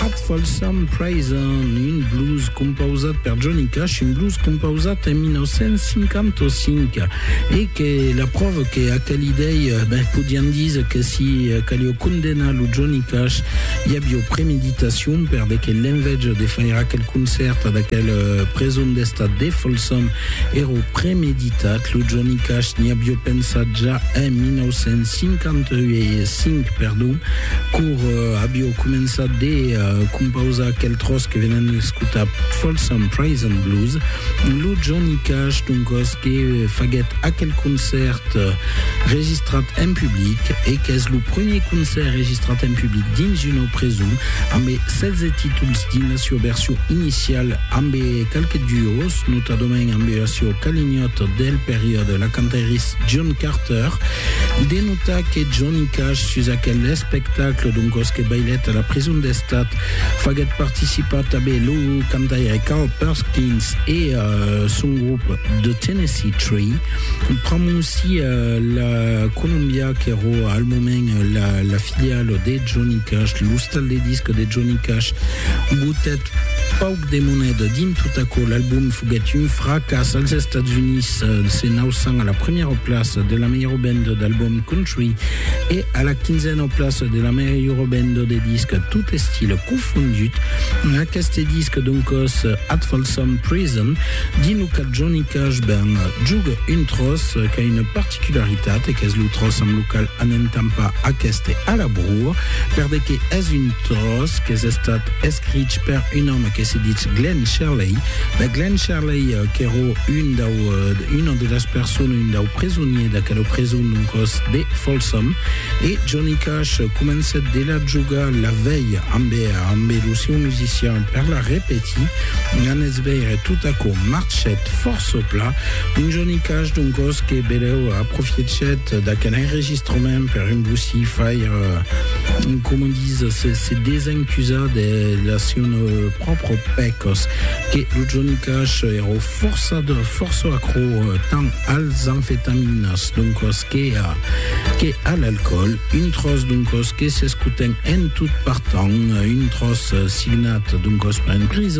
At Folsom Prison, un blues compausat per Johnny Cash, un blues compausat en 1955, e que la pròva que aquel idei, ben, podiam díser que si calió condenar lo Johnny Cash, i avió premeditacion per de que l'enveja de faire aquel concèrt ad aquel preson d'estat de Folsom èro premeditat, lo Johnny Cash n'i avió pensat ja en 1955. 58,5 perdon, cour abio començat de compausar aquel tròç que venèm d'escotar, Folsom Prison Blues, lo Johnny Cash doncòs que faguèt aquel concèrt registrat en public e qu'es lo premier concèrt registrat en public dins una preson, ambe 16 títols dins la siua version inicial, ambe qualques duos, notadament ambe la siua calinhòta del periòde, la cantairis John Carter. De notar que Johnny Cash, sus aquel espectacle d'un gòs que bailèt a la prison d'estat, faguèt participar tanben lo cantaire Carl Perkins e son grop The Tennessee Three, pram aussi la Columbia qu'èro al moment la filiala de Johnny Cash. L'ostal de disc de Johnny Cash botèt pauc. Demoned, dins tot aquò, l'album foguèt un fracàs als Estats Units, se nauçant a la primièra plaça de la melhor venda d'album country e a la quinzena plaça de la melhora venda de disc tot estil cofondut. Aqueste disc d'un còs At Folsom Prison, dins lo qual Johnny Cash ben joga un tròç qu'a una particularitat particularitat e qu'es lo tròç amb lo cal an entampar aqueste alabror, perdeque es un tròç qu'es estat escrich per un òme que se ditz Glenn Sherley. Ben, Glenn Sherley qu'èro un dau, una de las personas, un dau presonier d'aquela preson d'un còs de Folsom, e Johnny Cash comencèt de la jogar la veilha ambe, ambe lo seu musician per la repetir, Veire tot aquò marchèt fòrça plan, un jorni qu'ash d'un còs que belèu aprofiechèt d'aquel enregistrament per embusir, faire, coma dis, se desentusar de la siona pròpra pècas, que lo jorni qu'ash èra forçat fòrça acrò tant als amfetaminas d'un còs que a l'alcòl, un tròç d'un còs que s'escotèn en tot partant, un tròç signat d'un còs pren prison.